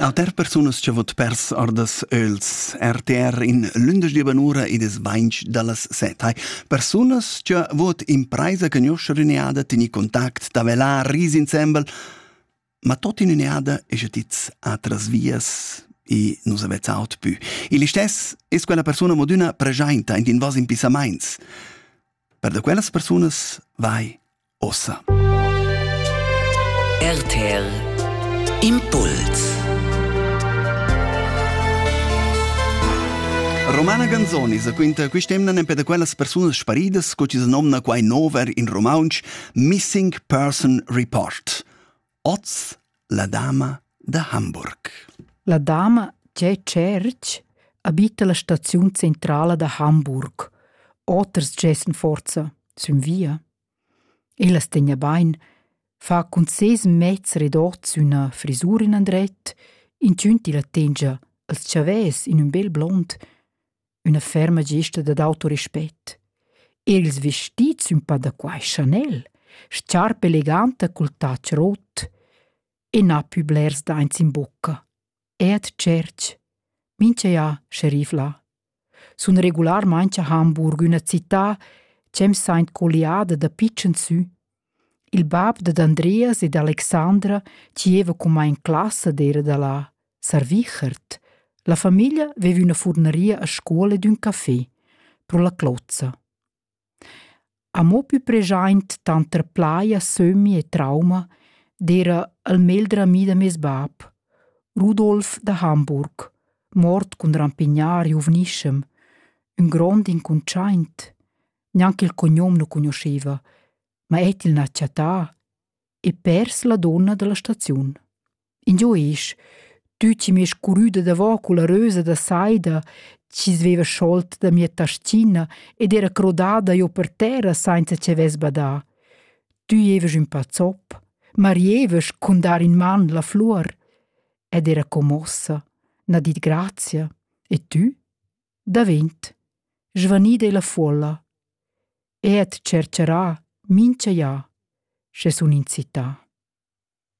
Auter persunas che vot pers ordas öls. RTR in lündeschdi banura id es bainch da las set. Persunas che vot impraisa conoscer üneada, teni contact, da velar, ris insembel, ma tot in üneada es tits atras vias e nus avetz aut pü. Il istes es quella persuna modüna pregiainta int in vos impissamaints. Per da quellas persunas vai ossa. RTL Impuls Romana Ganzoni sa quinta quest'emna nempe da quellas persunas sparidas sco chi se nomna quai nover in romaunsch Missing Person Report. Oz la dama da Hamburg. La dama Tge Cerch abita la staziun centrala da Hamburg, oters gessen forza, sün via. Ella tegna bain, fa cun ses mez redots üna frisur in andret, inchün tilla tengia als chavès in ün bel blond, üna ferma gesta dad autorispett. Er ils vestits ün pa da quai Chanel, sciarpa eleganta cul tatsch rot e na pü blers daints in bocca. Ed tschert, mincha ja scharifla. Sun regularmaing a Hamburg üna città ch'em saint colliada da pitschens sü. Il bab dad Andreas e d'Alexandra gieva cumma in classa d'eira da là, Sarvichert. La famiglia veva üna furneria a scuola ed ün café, pro la clozza. Amo pü preschaint tanter plaja, sömmi e trauma d'eira il megl drami da meis bap, Rudolf da Hamburg, mort cun rampignar giuvnischem, ün grond incuntschaint. Gnanca il cognom nu cugnuschaiva, ma eir til n'ha chattà. e pers la donna dalla staziun. Ingio esch, tü chi mi es curüda davò culla rösa da saida, chi sveva scholt da mia tastina ed era crodada io per terra sainza che vess badà. Tü evas ün pa zopp, ma rievas cun dar in man la flur. Ed era commossa, n'ha dit grazia, e tü? Davent. Svanida è la folla. e et tschercherà mincha ja, sche sun in città.